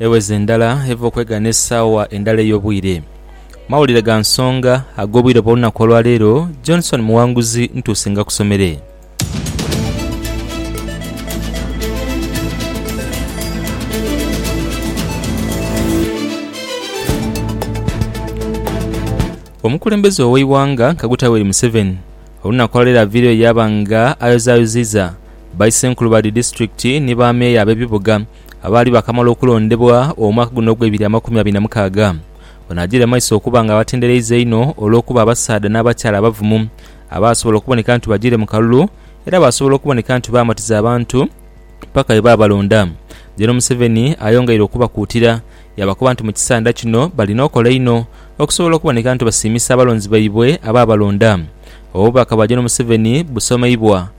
Eweze endala eva okwegaana esaawa endala ey'obwire. Mawulire ga nsonga ag'obwire bw'olunaku olwa leero. Johnson Muwanguzi ntuuse ngakusomere. Omukulembeze ow'eighanga Kaguta Yoweri Museveni olunaku olwa leero aviireyo yaaba nga ayozayoziiza baisenkulu ba dhi disitulikiti ni ba meeya ab'ebibuga Abaali baakamala okulondebwa omwaka guno ogw'ebiri amakumi abiri na mukaaga, banaagire mu maiso okuba nga batendereiza einho olw'okuba abasaadha n'abakyala abavumu abaasobola okuboneka nti bajiire mu kalulu era baasobola okuboneka nti baamatiza abantu paka bwe baabalonda. Gen Museveni ayongeire okubakuutira yaabakoba nti mu kisanda kino balina okola einho okusobola okuboneka nti basiimisa abalonzi baibwe abaabalonda. Obubaka bwa Gen Museveni busomeibwa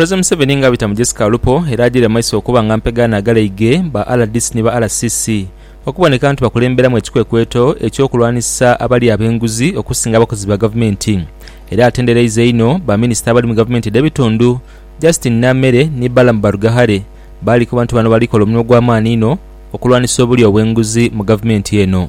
President Museveni nga abita mu Jessica Alupo era ajiire mu maiso okuba nga mpega anagalaige ba rdc ni ba RCC okuboneka nti bakulemberamu ekikwekweto eky'okulwanisa abalya ab'enguzi okusinga abakozi ba gavumenti era atendereiza einho ba minisita abali mu gavumenti edh'ebitundu Justine Namere ni Balaam Barugahare baalikoba nti bano balikola omulimu gw'amaani inho okulwanisa obulya obw'enguzi mu gavumenti eno.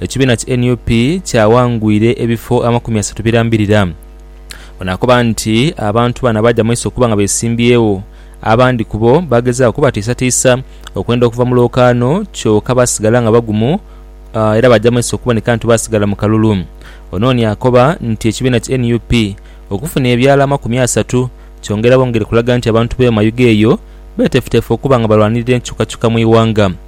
ekibiina ki nup kyawangwire ebifo amakumi asatu birambirira. Ono akoba nti abantu bano abaja maiso okuba nga besimbyewo, abandi kubo bagezaako okubatiisatiisa okwenda okuva mu lwokaano kyoka basigala nga bagumu era baja maiso okuboneka nti basigala mu kalulu. Onooni akoba nti ekibiina ki nup okufuna ebyalo amakumi asatu kyongera bwongere kulaga nti abantu be Mayuge eyo betefutefu okuba nga balwanirira enkyukakyuka mu ighanga.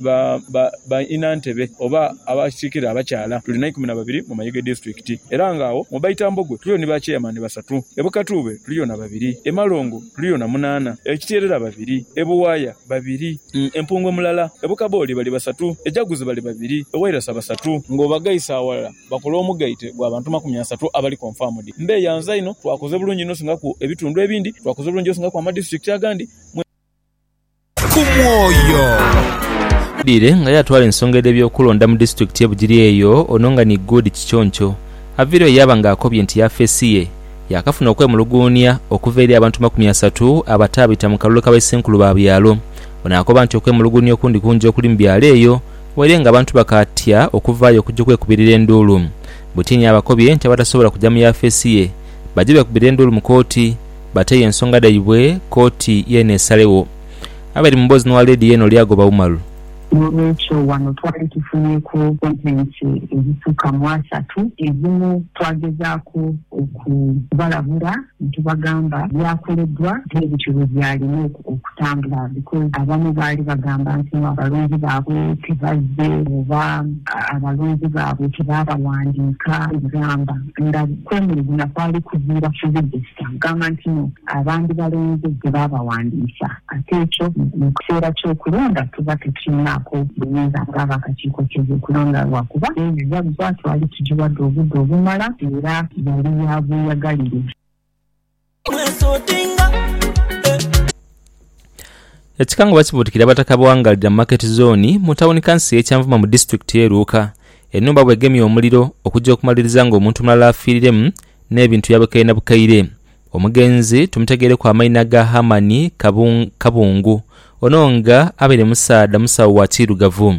ba ba ba inantebe oba abakiikirira abakyala tuli naikumi na babiri mu Mayuge Disitulikiti era nga agho mu baitambogwe tuliyo ni ba Chairman basatu. E Bukatuube tuliyo na babiri, e Malongo tuliyo na munaana, e Kitierera babiri, e Buwaaya babiri, e Mpungwe mulala, e Bukabooli bali basatu, e Jaguzi bali babiri, e Wairasa basatu. Ng'obagaisa aghalala bakola omugaite gwa bantu makumi asatu abali confirmed. Mbeyanza inho, twakoze bulungi inho osingaku ebitundu ebindi, twakoze bulungi osingaku amadisitulikiti agandi. ku mwoyo. Aidhire nga yaatwala ensonga edh'ebyokulonda mu disitulikiti ye Bugiri eyo ono nga ni Good Kiconco avaireyo yaaba nga akobye nti yafeesi ye yaakafuna okwemuluguunia okuva eri abantu makumi asatu abataabita mu kalulu ka baisenkulu ba byalo. Ono akoba nti okwemuluguunia okundi kungi okuli mu byalo eyo waire nga abantu bakaatya okuvaayo okuja okwekubirira enduulu butini abakobye nti abatasobola kuja mu yafeesi ye baje beekubire enduulu mu kooti bate yo ensonga dhaibwe kooti yeene esalegho. Abali mu boozi n'owa leediyo eno lyagoba Umaru. N'olwekyo wano twali tufunyeku kontenti edhisuka mu asatu. Edhimu twagezaaku okubalabula ni tubagamba byakoleddwa bwe bityo bwe byalina okutambula because abamu baali bagamba nti no abalonzi baabwe tebazze oba abalonzi baabwe tebaabawandiika. Gamba nga kwemulugunya kwali kuviira ku bidho. Kyagamba nti no abandi balenzi ghe baabawandiisa. Ate ekyo mu kiseera ky'okulonda tuba tukirinaaku buyinza ng'ab'akakiiko k'ebyokulonda lwakuba n'ebibaluwa twali tugiwadde obudde obumala era yali ya bweyagalire. Ekikango bakibuutikira Abataka ba Wangalira Market Zooni mu tawuni kanso y'e Kyanvuma mu disitulikiti y'e Luuka, ennhumba bw'egemye omuliro okugya okumaliriza ng'omuntu omulala afiiriremu n'ebintu yabikaire na bukaire. Omugenzi tumutegeireku amaina ga Hamani Kabungu. Ono nga abaire musaadha musawo wa kiirugavu.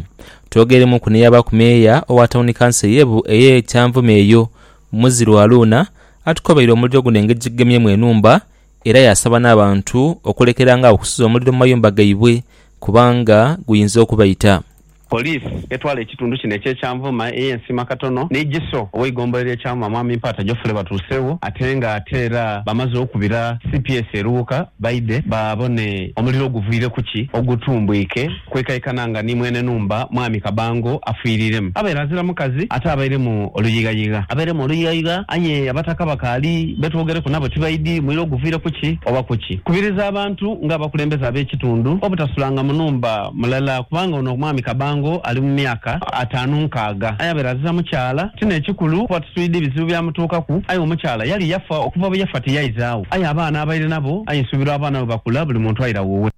Twogeremuuku n'eyabaaku meeya owa tawuni kanso ey'e Kyanvuma eyo, Muziro Aluuna atukobaire omuliro guno engeri gyegugemyemu enhumba era yaasaba n'abantu okulekerangagho okusuza omuliro mu mayumba gaibwe kubanga guyinza okubaita. Poliisi etwala ekitundu kino ekye Kyanvuma eye Nsiima Katono ni Giso oweigombolola lye Kyanvuma Mwami Mpaata Geoffrey batuusewo ate nga ate era bamaze okubira cps e Luwuka baidhe babone omuliro oguviire kuki ogutumbwike kwekaikana nga ni mwene numba Mwami Kabango afiiriremu abaire azira mukazi ate abairemu oluyighayigha. Abairemu oluyighayigha aye abataka bakaali betwogereku nabo tibaidhi muliro guviire kuki oba kuki kubiriza abantu nga abakulembeze abekitundu obutasulanga mu numba. Mulala, kubanga ono omwami kabango ali mu myaka ataanu nkaaga, aye abaire aziza mukyala. Ti n'ekikulu kuba tuswidi bizibu byamutuukaku, aye omukyala yali yafa. Okuva bwe yafa tiyaizagho, aye abaana abaire nabo, aye nsuubira abaana bwe bakula buli muntu aira wuwe.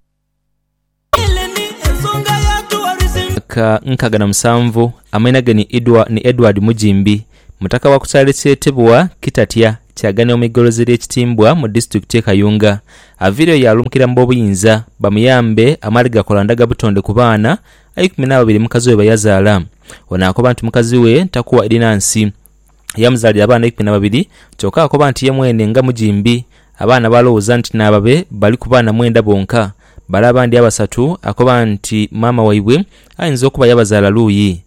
Myaka nkaaga na musanvu, amaina ge ni Edward Mujimbi, Mutaka wa ku kyalo ekyetebwa Kitatya kyaganira mu igolozi erye Kitimbwa mu disitulikiti ye Kayunga. Aviireyo yaalumukira mu b'obuyinza bamuyambe amaale gakola ndaga butonde ku baana eikumi n'ababiri mukazi we beyazaala. Ono akoba nti mukazi we takuwa eri na nsi. Yamuzaalira abaana eikumi na babiri kyoka akoba nti ye mwene nga mujimbi abaana baalowooza nti n'ababe bali ku baana mwenda bonka. Bale abandi abasatu akoba nti maama waibwe ayinza okuba yabazaala luuyi.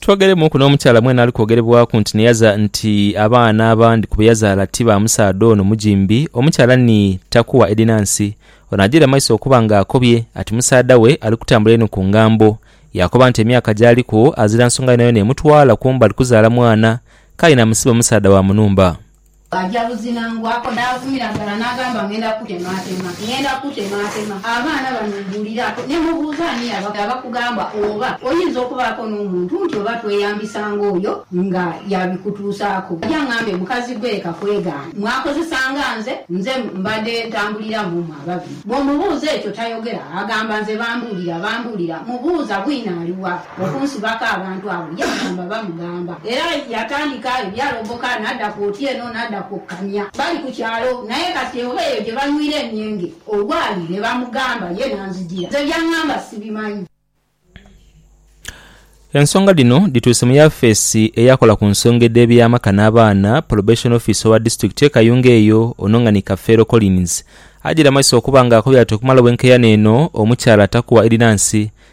Twogeremuuku n'omukyala mwene ali kwogerebwaku nti niyaza nti abaana abandi ku be yazaala ti ba musaadha ono mugimbi. Omukyala ni Takuwa Edinansi. Ono ajiire mu maiso okuba nga akobye ati musaadha we ali kutambula inho ku ngambo. Yaakoba nti emyaka gy'aliku azira nsonga yonayona emutwala kumbali kuzaala mwana, k'aye namusiba musaadha wa mu nhumba. Bw'aja buzinangwako n'avumira ghala n'agamba, Ng'enda kukutemaatema, ng'enda kukutemaatema. Abaana bano mbuuliraku, ne mubuuza ani yabagha abakugamba oba oyinza okubaako n'omuntu nti oba tweyambisa ng'oyo nga yaabikutuusaaku. Aja ang'ambe, Mukazi gwe ka kwegaane, mwakozesa nga nze, nze mbadde ntambulira mu mmwe ababiri. Bw'omubuuza ekyo tayogera, agamba, Nze bambuulira, bambuulira. Mubuuza, Bwino ali wa? okunsibako abantu abo, yagamba bamugamba. Era yatandika ebyalogoka n'adha kwoti eno n'adha kwokkania bali ku kyalo. Naye kati oba eyo gye banywira emyenge olwali lwe bamugamba ye n'anzijira. Nze by'angamba sibimanyi. Ensonga dhino dhituuse mu yafeesi eyakola ku nsonga edh'eby'amaka n'abaana, Probation Officer owa disitulikiti e Kayunga eyo ono nga ni Kafeero Collins ajiramazisa okuba nga akobye ati okumala obwenkeyane eno omukyala atakuwa edinansi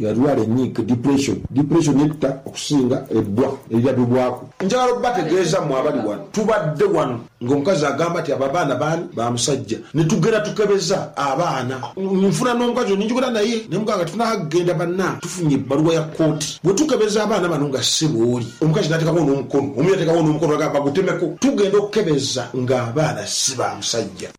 Yalwala enyiike, depression. Depression etta okusinga ebbwa erirabibwaku. Njagala okubategeeza mmwe abali wano, tubadde wano ng'omukazi agamba nti abo abaana baani? Ba musajja. Ne tugenda tukebeza abaana. Nfuna n'omukazi ono ne njogera naye ne mugamba nga titunaagenda banange tufunye ebbaluwa ya kkooti. Bwe tukebeza abaana bano nga ssebo oli, omukazi n'ateekagho n'omukono, omu yateekagho n'omukono n'agamba bagutemeko. Tugenda okukebeza ng'abaana si ba musajja.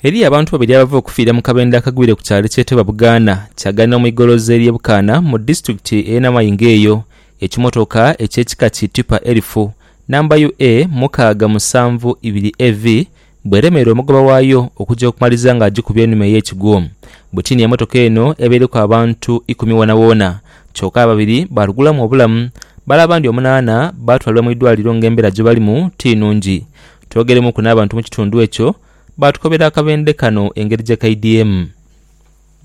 Eriyo abantu babiri abava okufiira mu kabendo akagwire ku kyalo ekyetebwa Bugaana Kyagana mu igoloza erye Bukaana mu disitulikiti eye Namayingo eyo ekimotoka ekyekika ki Tipa Erifu namba UA mukaaga musanvu ibiri AV bweremeera omugoba waayo okuja okumaliza nga agikubye enhuma eyekigwo butini emotoka eno ebaireku abantu ikumi wonawoona kyoka ababiri balugulamu obulamu bale abandi omunaana batwalibwa mu idwaliro nga embera gyebalimu ti nungi. Twogeremuuku n'abantu mu kitundu ekyo, baatukobera akabendhe kano engeri gye kaidyemu.